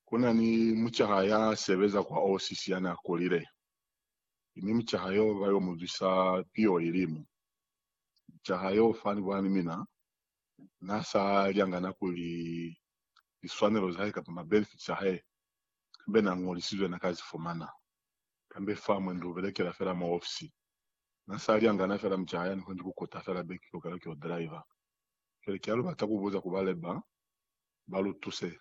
Ku na ni mucaha ya sebeza kwa osisi ya n'a kulile, mi mucaha y'o ba y'o mu zwisa piho ilimu. Mucaha y'o fani kwa ni mina, n'a sa lyangana kuli liswanelo za hae kamba mabenefiti a hae kambe n'a ñolisizwe n'a ka zi fumana, kambe fa mwendi u belekela fela mwa ofisi. N'a sa lyangana fela mucaha ya ni koni ku kota fela beki kaufela ki o driver. Cwale ki ha lu bata ku buza ku ba leba, ba lu tuse.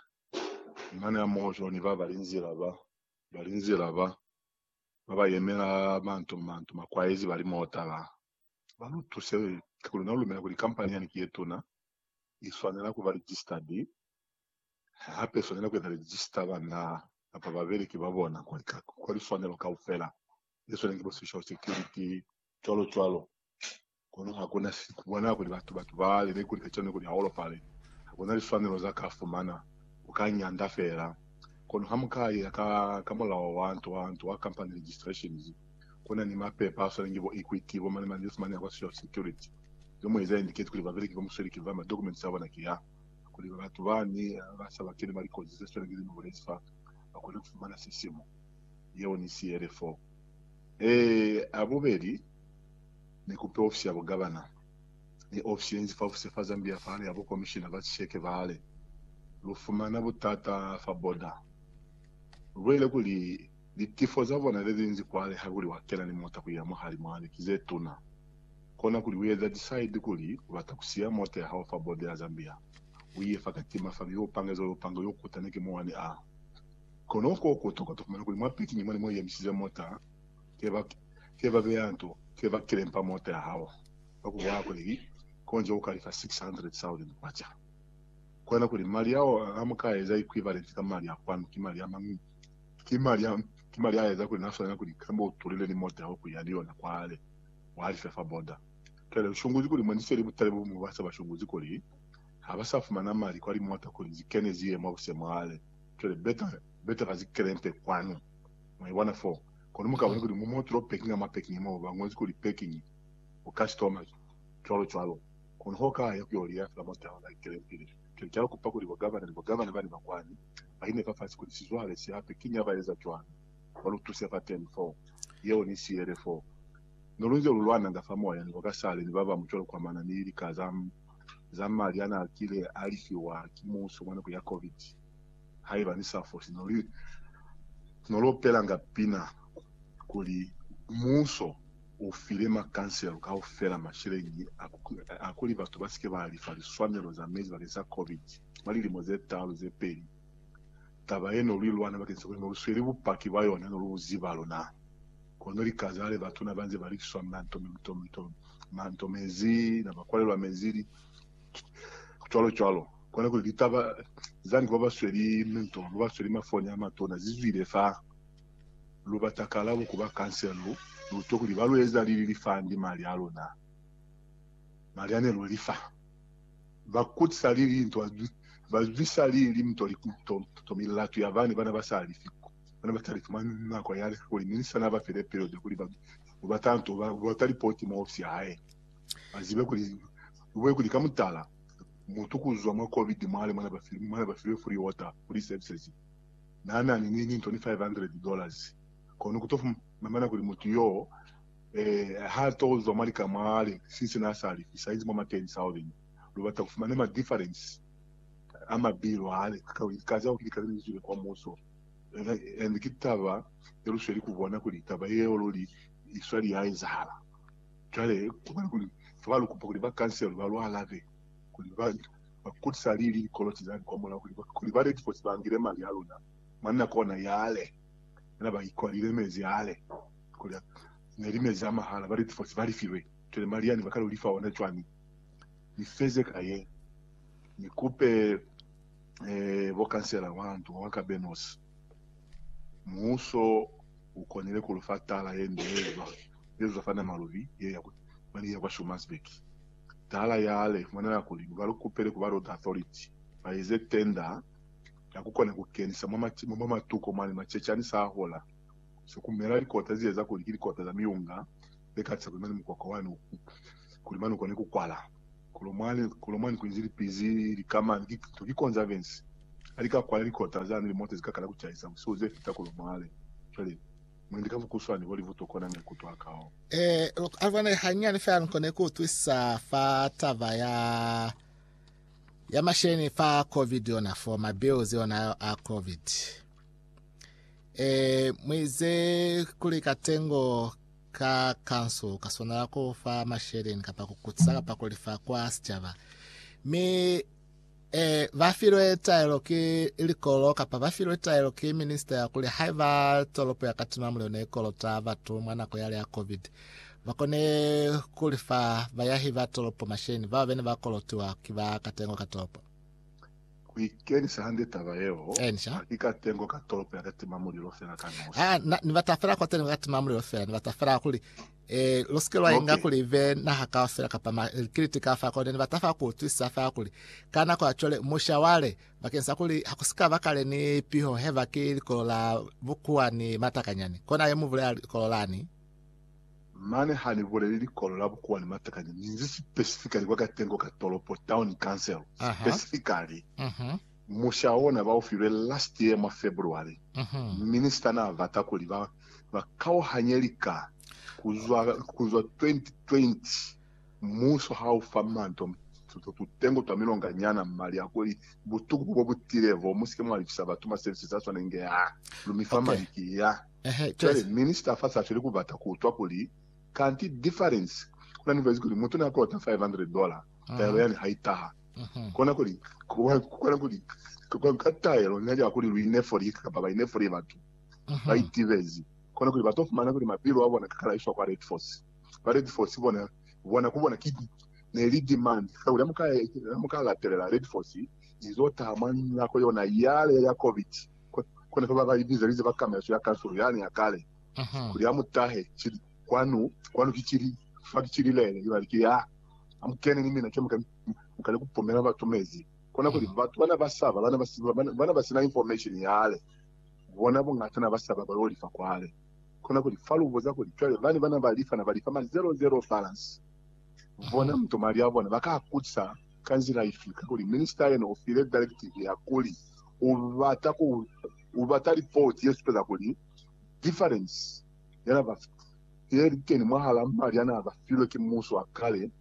Munani hamoho jwalo ni ba ba linzila ba ba linzila ba ba ba yemela manto ni manto, makwaezi ba limotala, ba lu tuse. Ka kuli na lumela kuli kampani yani ki ye tuna, i swanela ku ba registered, hape i swanela ku eza register banna kapa babeleki ba bona kwa, kwa liswanelo kaufela, ze swaneng ki bo social security, cwalo cwalo. Kono ha ku na si ku bona kuli batu ba tubale ne ku li kacwani kuli ha u lopale. Ha ku na liswanelo za ka fumana, u ka nyanda feela. Kono ha mu ka iya ka kamulaho wa nto wa nto wa company registrations, ku na ni mapepa a swana ki bo Equity, bo mani-mani ze si mani a kwa Social Security. Ze mu eza indicate kuli babeleki ba musweli ki ba, ma documents a bona ki a, kuli batu ba ni ba sa ba keni mwa likozi ze swana ki ze ni bulezi fa, ba kone ku fumana sisimo. Yeo ni siele foo. Ee, a bubeli. ni kupe ofisi ya bugabana ni ofisi yenzi fa ofisi fa Zambia fahali ha bukomishina ba sisheke bahali. Lu fumana butata fa boda. Lu bulela kuli, Litifo za bona le linzi kwale ha kuli wa kena ni mota ku ya mwa hali mwa li ki ze tuna. Kona kuli u eza decide kuli u bata ku siya mota ya hao fa boda ya Zambia, u iye fa Katima fa mi u pange zolo upanga yo kutana ki muwani a. Kono ko ku tokota fumana kuli mwa pikinyi mwa ni mo i emisize mota Ke ba beya nto, ke ba kelempa mota ya hao, ka ku bolela kuli ki konji u ka lifa 600,000 kwacha. Kona kuli mali ao a mu ka eza equivalent ka mali a kwanu ki mali a mañi? Ki mali a eza kuli na swanela kuli kamba u tulile ni mota yao ku ya ni yona kwale, wa lifa fa border. Cwale lu shunguzi kuli mwani seli butale bo buñwi ba sa ba shunguzi kuli ha ba sa fumana mali kwa limota kuli zi kene zi ye mwa busemwale. Cwale beta ba zi kelempe kwanu. Mwa ibona foo? Kono mu kabone kuli mu mo tulo pekingi ka mwa pekingi mo ba ñozi kuli pekingi, u ka si tomazi, cwalo cwalo. Kono ha u ka ya ku yo liya fela mwa taha ka likelempile, cwale ki a kupa kuli bo gavana ni bo gavana bani ba kwani ba ine fafasi kuli sizwale si hape kiñi ha ba eza cwalo, ba lu tuse fateni foo. Yeo ni siele foo. Ne lu nze lu lwananga fa moya ni bo kasale ni ba bañwi cwalo kwamana ni lika za, za mali a n'a kile a li fiwa ki muso mwa nako ya COVID. Haiba ni sa foli, no li, no lopelanga pina kuli, Muso u file makanselo kaufela masheleñi a ku, a kuli batu ba si ke ba lifa liswanelo za mezi bakeng sa Covid mwa lilimo ze talu ze peli. Taba ye no lu lwana bakeng sa kuli no lu sweli bupaki bwa yona no lu bu ziba luna. Kono likazale batuna ba nze ba likiswa mna, nto, nto, nto, ma, nto mezi, na ba kwalelwa mezi, li, cwalo-cwalo. Kona kuli litaba za nge babasweli mento, babasweli mafoni amatona zizwile fa lubata kalabo ku ba kansela, lu lutwe kuli balueza lili lifandi mali alona, mali ane luelifa. Bakutisa lili linto, bazwisa lili limto to milatu yabane bana basalifi, bana batalifi mwa nako yale, kuli Minista nabafi lepelelo lyakuli babe lubata nto, lubata lipoti mwa ofisi yahae. Ba zibe kuli, lu bone kuli ka mutala, mutu ku zwa mwa Covid mwa limo mwa ne ba filwe free water ku li services, n'a na ni ni toni 500 dollars. Kono ku to fumana kuli mutu y'o, eh, h'a to zwa mwa lika mwa le, since n'a sa lifi, saizi mwa ma 10,000. Lu bata ku fumana ma difference a mabilo hale ka, ka za kuli lika le ne li zwile kwa muso. And ki taba ye lu sweli ku bona kuli taba yeo luli i sweli ya ezahala. Cwale, ku bali kuli, Fa ba lu kupa kuli ba kansele, ba lu alabe, kuli ba, ba kutisa lili likoloti zani kwa mulao, kuli ba, kuli ba netifose ba ngile mali a luna. Mwanna kona yale, yena ba ikwalile mezi yale, kuli a, ne li mezi a mahala, ba netifose ba li filwe. Cwale mali yani ba ka lu li fa ona cwani? Ni feze ka ye, ni kupe, eh, bo kansela wa ndu wa ka Benos. Muuso u konile ku lu fa taala ye nde ye lwa Elder Fana Malubi ye ya ku Bali ya kwa Schommersburg. Taala yale fumanela kuli ba lu kupele ku ba Road Authority ba eze tenda ya ku kona ku kenisa mwa matuko mwa limacecani sa hola ze ku mela likota ze eza kuli ki likota za miunga ze katisa kuli mane mukwakwa wani u kone ku kwala. Kolomani kuinzi lipizi likamani ki to ki konza Vince alika kwala likota za nili mote zikakala kucahisa busihu zefita kolomale cwale mwendi ka bukuswani holi butokona maikuto akao. Eh, loko alibona hanyani fela nikone kuutwisa fa taba ya ya masheni fa covid yona for my bills yona a covid eh mwize kuli katengo ka kanso ka swanela ku fa masheleni kapa ku kutisa kapa ku lifa kwa sicaba mi e, ba filwe taelo ki likolo kapa ba filwe taelo ki minista ya kuli haiba tolopo ya Katina Mulilo ne kolota batu mwa nako yale ya COVID ba kone ku lifa bayahi ba tolopo masheleni bao bene ba kolotiwa ki ba katengo ka tolopo. Ku ikenisa hande taba yeo, Encia. ha ki ka tengo ka tolopo ya ka tima mulilo fela ka nosi. Ha, na, ni bata fela kwa tengo ka tima mulilo fela, ni bata fela kuli, eh, lo sike lwa inga Okay. kuli ibe naha kaufela kapa ma, likiliti ka fa kone, ni bata fa ku utwisisa fa kuli, ka nako ya cwale, musha wale, bakeng sa kuli ha ku sika ba kale ni piho heba ki likolo la bukuwa ni matakanyani. Kona ye mu bulela likolo lani. Mane ha ni buleli likolo la bukuwa ni matakanya, ni nzi specifically kwa katengo ka tolopo, town council, specifically musha ona ba u filwe last year mwa February. Minister na bata kuli ba ba kauhanye lika ku zwa, ku zwa 2020. Muso ha u fa manto tutengo twa milonga nyana mali a kuli, butuku bo bu tile bo, mu si ke mwa lifisa batu ma services a swanengi, aa, lu mi fa mali ki, aa. Cwale minister fa sa feli ku bata ku utwa kuli, kanti difference ku na ni vaizi kuli mutu ne a kolota 500 dollar, taelo yani ha i taha. Kona kuli, ku kona kuli, ka taelo ne ya kuli lu ine fo lika kapa ba ine fo li batu ba itibezi, kona kuli ba to fumana kuli mapilu a bona ka kalaiswa kwa Red Force. Ba Red Force bona, bona ku bona ki ne li demand kakuli ha mu ka, ha mu ka latelela Red Force i zo taha mwa nako yona yale ya Covid. Kona fa ba ba ibizelize ba kameleso ya kansulu yani ya kale kuli a mu tahe kili, Kwanu, kwanu ki kili, fa ki kili lele. Ibali ki ya, Amukeni ni mina, ke muka mu kale ku pumela batu mezi. Kona kuli, batu bana ba saba, bana ba sina information yale, bona bungata na ba saba ba yo lifa kwale. Kona kuli, fa lu buza kuli, cwale bani bana ba lifa na ba lifa ma zero-zero balance. Bona mutomali ya bona ba ka kuza ka nzila ifi? Kakuli minista yena u file directive ya kuli u bata ku u bata lipoti ye supeza kuli difference ya na ba ye li teni mwahal'a mali ya na ba filwe ki muso wa kale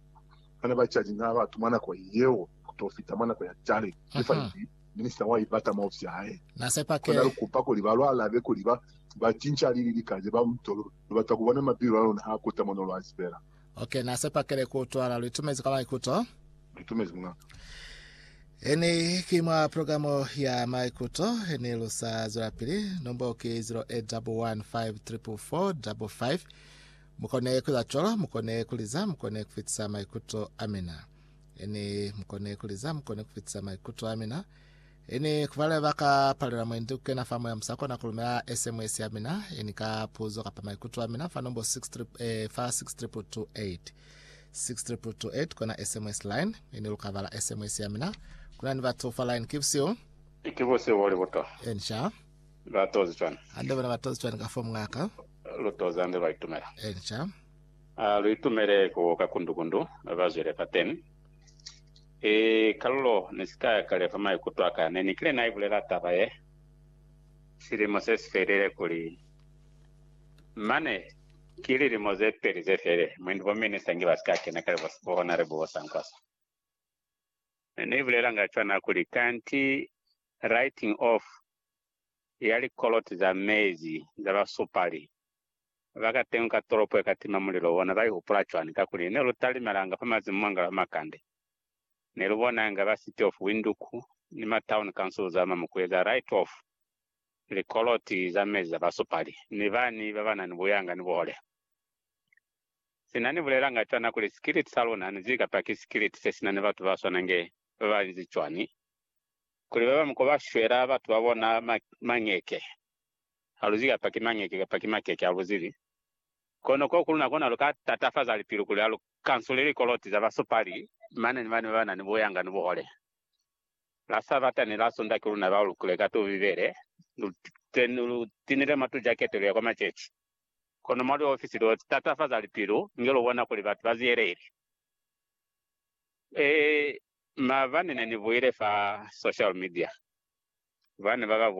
ha na ba charge nga batu mwa nako yeo ku t'o fita mwa nako ya cwale. Difference minista wa i bata mwa ofisi ya hae. Na sepa kuli na lu kupa kuli ba lu alabe kuli ba ba cinca lili lika ze ba mu to lu bata ku bona mabilu a luna ha kuta mo no lu azibela. Ok, na sepakele ku utwala litumezi ka maikuto. Litumezi mungaka. Eni ki mwa programo ya maikuto eni lu sa zwelapili. Nombo ki 0811544555. Mukone kuza cwalo, mukone kuliza, mukone kufitisa maikuto amina. Eni mukone kuliza, mukone kufitisa maikuto amina. Ini kubale ba ka palela mwendi kukena fa moya musa kona kulumela SMS ya mina ini ka puzo kapa maikuto a mina fa nombo 6 eh, fa 6228 6228 kona SMS line ini luka bala SMS ya mina kuna ni batu fa line keeps you Iki busi boli buto. Ensha. Batozi chwani. Ande bona batozi chwani ka fomu ngaka. Lutozi ande baitumela. Ensha. Uh, luitumele ku kakundukundu bazwele pateni Ee, Carlo, ni si ka kalefa maikuto a ka. Ne ni kile na i bulela taba ye, silimo se si felile kuli, mane, ki lilimo ze peli ze felile, mwendi bo minista nge ba si ka kena kale bo hona le bo sankwa sa. Ne ni bulelanga cwana kuli, kanti writing off ya likoloti za mezi za basupali Ba ka teñi ka tolopo ye ka tima mulilo, bona ba ihupula cwani? Kakuli ne lu talimelanga fa mazimu mwa ngalo a makande. Ne lu bona inga ba City of Windhoek ni ma Town Council za mwa mukuye za right of likoloti za mezi za basupali ni bani ba ba na ni buyanga ni buhole. Sina ni bulelanga cwana kuli sikiliti sa luna ni zika pa ki sikiliti se si na ni batu ba swana nge ba ba inzi cwani, kuli ba bañwi ko ba shwela batu ba bona mañeke, Haluzibi kapa ki mañeke kapa ki makeke, haluzibi. Kono ko kuluna kona luka tatafaza lipilu kuli alu kansule likoloti za basupali mane ni mane babanani buyanga ni buhole. La Sabata ni la Sunda ki luna balukile ka tubi Bibele, lu tinile mwa tujakete luya kwa maceci. Kono mwa liofisi lu tatafaza lipilu inge lu bona kuli batu ba ziyelehile. Ee, maabani ne ni buile fa social media, bane baba